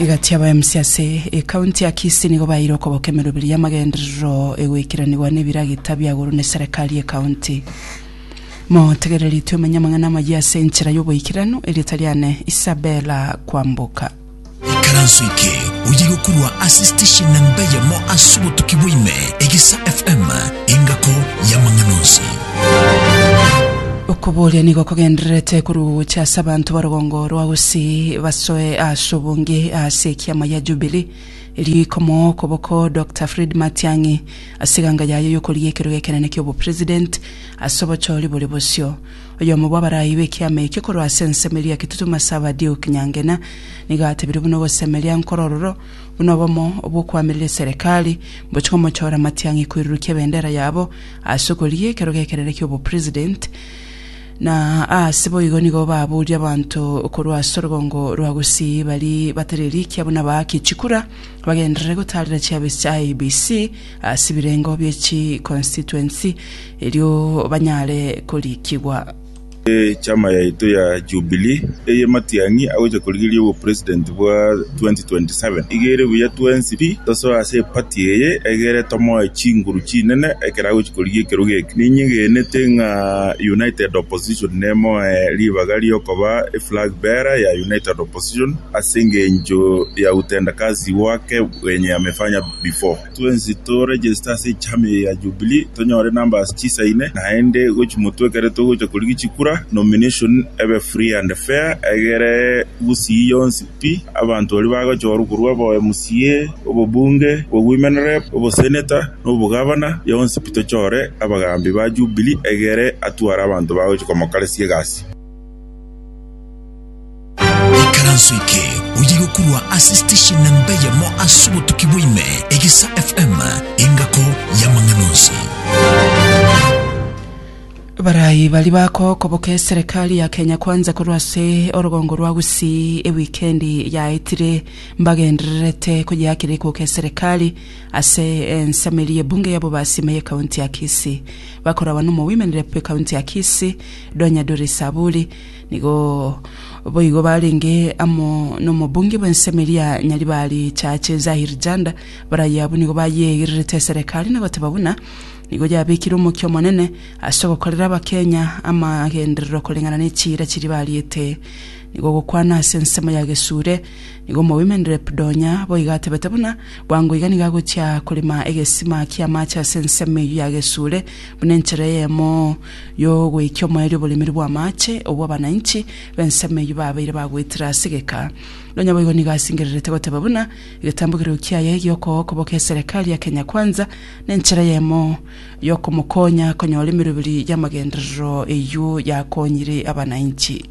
Egati abaemsi ase ekaunti ya Kisii nigo baeire okoboka emeroberi y'amagenderero egoikeranigwa n'ebiragita bia igoro n'eserekari y'ekaunti. Motegereri twemenye amang'ana amayia ase enchera y'oboikeranu erio tari ane Isabella kwamboka. Ikaranso eke oye gokorwa ase station namba eyemo ase obotuki bwa ime, Egesa FM, engako y'amang'ana onsi. Okobooria nigo kogendererete korwa ogocha ase abanto ba rogongo rwa Gusii basoe ase obonge ase ekiama gia Jubilee, erio ikomoa okoboko Doctor Fred Matiang'i ase eganga yaye y'okoria ekerogo ekenene ki'obopresident ase obochori bore bosio. Oyomo bw'abarai b'ekiama ekio korwa ase ensemo eria Kitutu Masaba Duke Nyangena nigo atebirie buna ogosemeria nkoro ororo buna obomo bw'okoamerera eserekari mbochie komochora Matiang'i koirurukia ebendera yabo ase okorigia ekero gekerere ki'obopresident, na aase boigo nigo baburia abanto korwa ase orogongo rwa gusii bari batari rikia buna baake chikura bagenderere gotaarera chiabesi chia IEBC ase ebirengo bie chiconstituency erio banyare korikigwa. Echama yaito ya Jubilee eye matiang'i agocha korigereria obopresident bwa 2027 iga ere buya twensi pi tosoe ase eparty eye egere tomoe chinguru chinene ekero agochi korigia ekerogo eke. Ninyegenete ng'a united opposition nemoe ribaga riokoba eflag bearer ya united opposition ase engencho ya utendakazi wake wenye amefanya before. Twensi to register ase echama eye ya Jubilee tonyore numbers chisaine naende gochi motwe ekero togocha korigia chikura nomination ebe free and fair egere gusii yonsi pi abanto baria bagochorwa korwa obo mca, obobunge, obo women rep, obo senator na obo gavana yonsi pi tochore abagambi ba Jubilee egere atware abanto bagochi komokaresia egasi. Ikaranso eke oye gokurwa ase station namba eyemo ase obotuki bwaime, Egesa FM, engako y'amang'ana onsi. Barayi bari bakokoboka eserekari ya Kenya Kwanza korwa ase orogongo rwa Gusii ewikendi yaetire mbagendererete koyeakera ikoka eserekari ase ensameri y'ebunge yabo basime y'ekaunti ya Kisii. Bakorabana omogoimanire bw'ekaunti ya Kisii, Donya Doris Aburi, Nigo boigo barenge amo nomobunge bw'ensemo eria Nyaribari Chache Zahir Janda, baraye abwo nigo bayeegererete eserekari na goteba buna nigo yabekire omokia omonene ase ogokorera Abakenya amagenderero koreng'ana nechiira chiria bariete. Nigo ogokwana ase ensemo ya Gesure, nigo Omowomen Rep Donya boigo atebete buna bwango iga nigo agochia korema egesima ki'amache ase ensemo eyio ya Gesure buna enchera eyemo y'ogwekia omoerio oboremeri bw'amaache, obwo abanainchi b'ensemo eyio babeire bagwetire ase egeka. Nonya boigo nigo asingererete goteba buna, Egetambo keria okiaye gi'okogwa okoboka eserekari ya Kenya Kwanza nenchera eyemo y'okomokonya konyora emeroberi y'amagenderero eyio yakonyire abanainchi.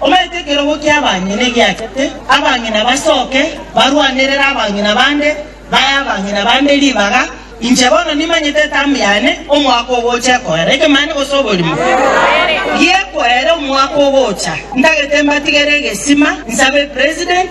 Omanyete ekerogo ki'abang'ina egiachete, abang'ina basoke barwanerere abang'ina bande, bae abang'ina bande ribaga. Inche bono nimanyete etamu yane omwaka ogocha ekoera ekemanye gose oborimo gi'ekoera omwaka ogocha. Ntagete mbatigere egesima, nsabe President,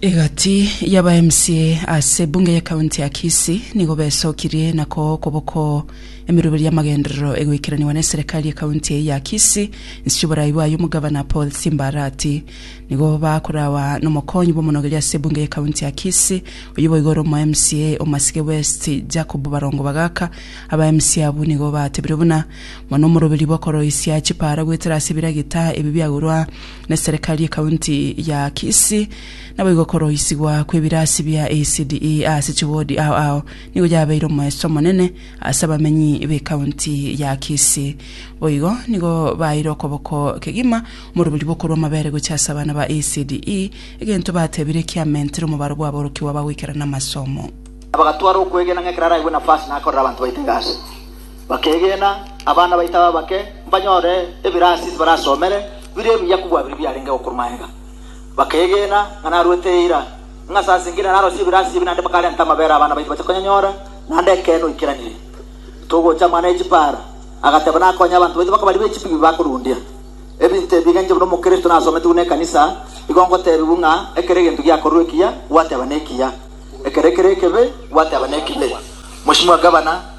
Egati yaba MCA ase bunge ye county ya Kisii nigo besokirie na koo koboko emeroberi y'amagenderero egoikeraniwa ne serikali ye county eye ya Kisii inse y'oborai bwayo omogavana Paul Simba Arati nigo bakorawa nomokonyi bw'omonogeri ase bunge ye county ya Kisii oyo boigo ore omo MCA Omasike West Jacob Barongo Bagaka aba MCA abwo nigo batebire buna mono omoroberi bw'okoroisia chipara goetera ase ebiragita ebi biagurwa na serikali y'ekaunti ya Kisii. Naboigo okoroisigwa kw'ebirasi bia ECDE ase chiwodi ao ao nigo yabeire omoeso omonene ase abamenyi b'ekaunti ya Kisii. Boigo nigo baeire okoboko kegima omorobori bw'okorua amabere gochia ase abana ba ECDE, egento batebire kiamentire omobaro bw'aborokigwa bagoikera namasomo. Abagatwara okwegena ng'a ekero araigwe nafasi nakorere abanto baito egasi. Bakeegena, abana baito aba abake mbanyore ebirasi barasomere bire ebiya kobua biri biarenge gokorwa magega. Bakeegena ng'a narwete eira, ng'a sase nginya narosie ebirasi ebi naende bakarenta amabera abana baito bache konyanyora, naende ekeene oikeranirie. Togocha mana echipara, agateba nakonye abanto baito bakaba ribe echipi bi bakorundia. Ebinto ebi egenche buna Omokristo nasometi buna ekanisa, igo ngotebiwu ng'a ekero egento giakorwa ekiya, gwateba nekiya, ekero kere ekebe, gwateba nekibe. Mochimwa Gavana.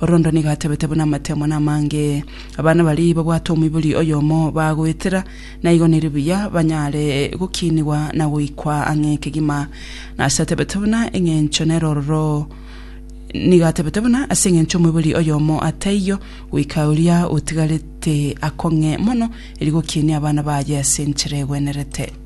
Orondo nigo atebete buna amateemone amange abana baria babwate omoibori oyomo bagoetera, na igo neri buya banyare gokiinigwa na goikwa ang'e ekegima. Na ase atebete buna eng'encho nere ororo nigo atebete buna ase eng'encho omoibori oyomo ataiyo, goika oria otigarete akong'e mono, erio gokiinie abana baye ase enchera egwenerete.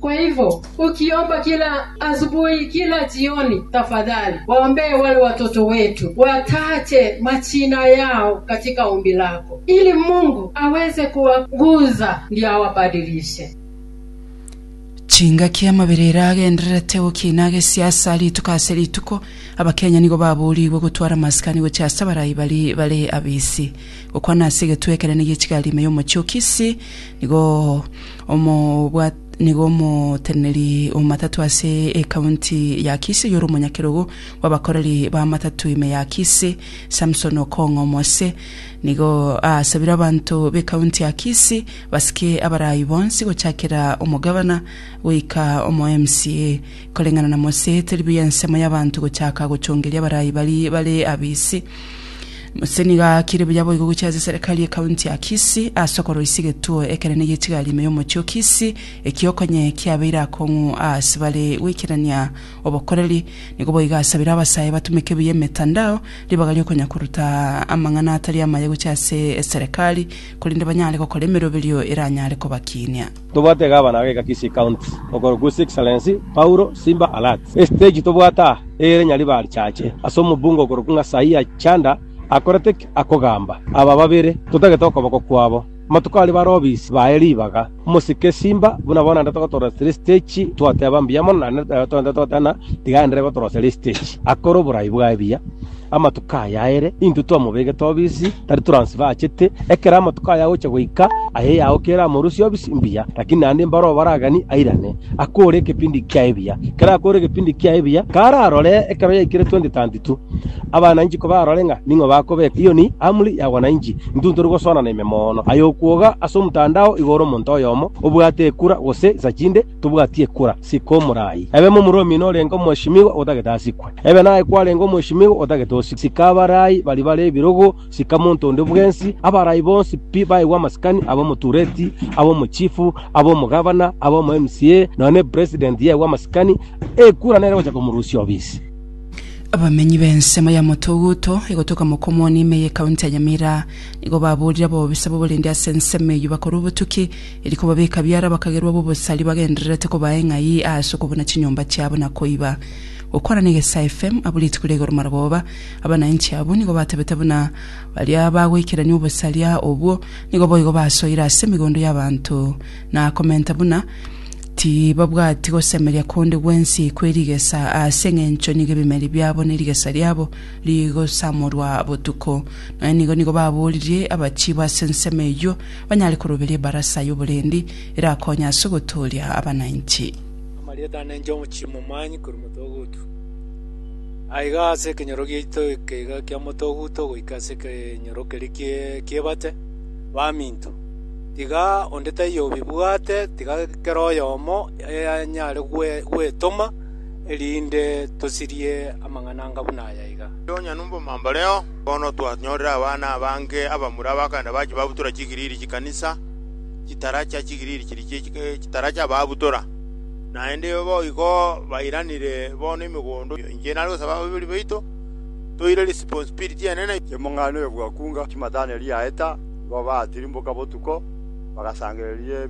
Kwa hivyo ukiomba kila asubuhi, kila jioni, tafadhali waombee wale watoto wetu, wataje majina yao katika ombi lako, ili Mungu aweze kuwaguza ndio awabadilishe. Chingaki amabere ere agendererete gokina gesiasa rituko ase rituko, Abakenya nigo baboorigwe gotwara amasikani gochia ase abarai baria bare abisi. Gokwana ase egetwe ekenene gi'echigari ime y'omochie o Kisii nigo Omobwati nigo omoteneneri omatatu ase ekaunti ya Kisi oyore omonyakerogo bw'abakoreri b'amatatu ime ya Kisi, Samson Okong'o Omose, nigo aasabire abanto b'ekaunti ya Kisi basike abaraai bonsi gochakera omogavana goika omo MCA. Koreng'ana na Mose, teri buya ensemo y'abanto gochaka gochongeria abarai baria bare abisi. Mose nigo aakire buya boigo gochia ase eserekari y'ekaunti ya Kisii ase okoroisia egetuo ekenene gi'echigari ime y'omochie o Kisii, ekio okonye kiabeire akong'u aase bare goikerania obokoreri. Nigo boigo asabire abasae batumeke buya emetandao ribaga ri'okonyakoruta amang'ana atari amaya gochia ase eserekari, korende banyare gokora emeroberio eranyare kobakiinia. Tobwate Gavana ageka Kisii County okorokwa His Excellency Paulo Simba Arati. Estage tobwate aa ere Nyaribari Church ase omobunge okorokwa Ng'asaia Chanda akorete ki? Akogamba aba babere totagete okoboko kwabo. Amatuko aria bare obisi baye ribaga omosike Simba buna bono naende togotorosia tiri stage twateba mbuya mono naende nere torente togoteba ng'a tiga aenderere gotorosia ri stage akore oborai bwaye buya. Amatuko aya aere intwe twamobegete obisi, tari toransibe achete. Ekero amatuko aya agocha goika, aye yao kere amorusie obisi mbuya, lakini naende mbaro obaragani airane, akore ekepindi kia ebiya. Ekero akore ekepindi kia ebiya, kararore ekero yaikire 2032. Abananchi kobarore ng'a ning'o bakobeka. Eyio ni amri ya wananchi. Intwe ntori gosoana na ime mono. Aye okwoga ase omtandao igoro omonto oyomo obwate ekura gose isachinde, Tobwati ekura, sika omorai. Ebe momoromi norenge omoeshimigwa otagete asikwe. Ebe naye kwarenge omoeshimigwa otagete osikwe. Sika abarai baria bare ebirogo, sika monto onde bwensi. Abarai bonsi pi baigwe amasikani, ab'omotureti, ab'omochifu, ab'omogavana, ab'omoMCA, nonya nepresident yaigwe amasikani, ekura nere ogocha komorusia obisi. Abamenyi b'ensemo ya Motoguto, egotoka Mokomoni, ime y'Ekaunti ya Nyamira, nigo baboorire ab'obobisa b'oborindi ase ensemo eyio bakorwa obotuki, Erio kobabeka biara bakagerwa b'obosari bagendererete kobaa eng'ai aase okobuna chinyomba chiabo na koiba. Gokwana n'egesae FM abwo rituko ria igoro marogoba, abanainchi abwo nigo batebete buna baria bagoikerania obosaria obwo nigo boigo basoire ase emegondo y'abanto na komenta buna tibabwati gosemeria konde gwensi kwe rigesa aase eng'encho nigo ebimeri biabo ne rigesa riabo rigosamorwa botuko. Nonya nigo nigo baboririe abachiibo ase ensemo eyio. banyare koroberia ebarasa y'oborendi erakonye ase ogotooria abananchi. Amarieta ane enchong'u chimomanyi korwa motoguto. Aiga ase ekenyoro giaito ekeiga kia motoguto goika ase ekenyoro keria kie- kiebate, baminto. Tiga onde taiyo obibwate, tiga kera oyomo anyare gwe- gwetoma, erinde tosirie amang'ana anga buna aya iga. Onye nubomambareo. Bono twanyorire abana abange abamura abakanda bachia babutora chigiriri chi'ekanisa, chitaracha chigiriri chiria chie chitaracha babutora. Naende boigo bairanire bono emegondo. Inche nare gosaba ababori baito toire responsibility enene. Chimong'ana oyo bwakunga chimatane riaye ta, nigo baatirimboka botuko, bagasangereria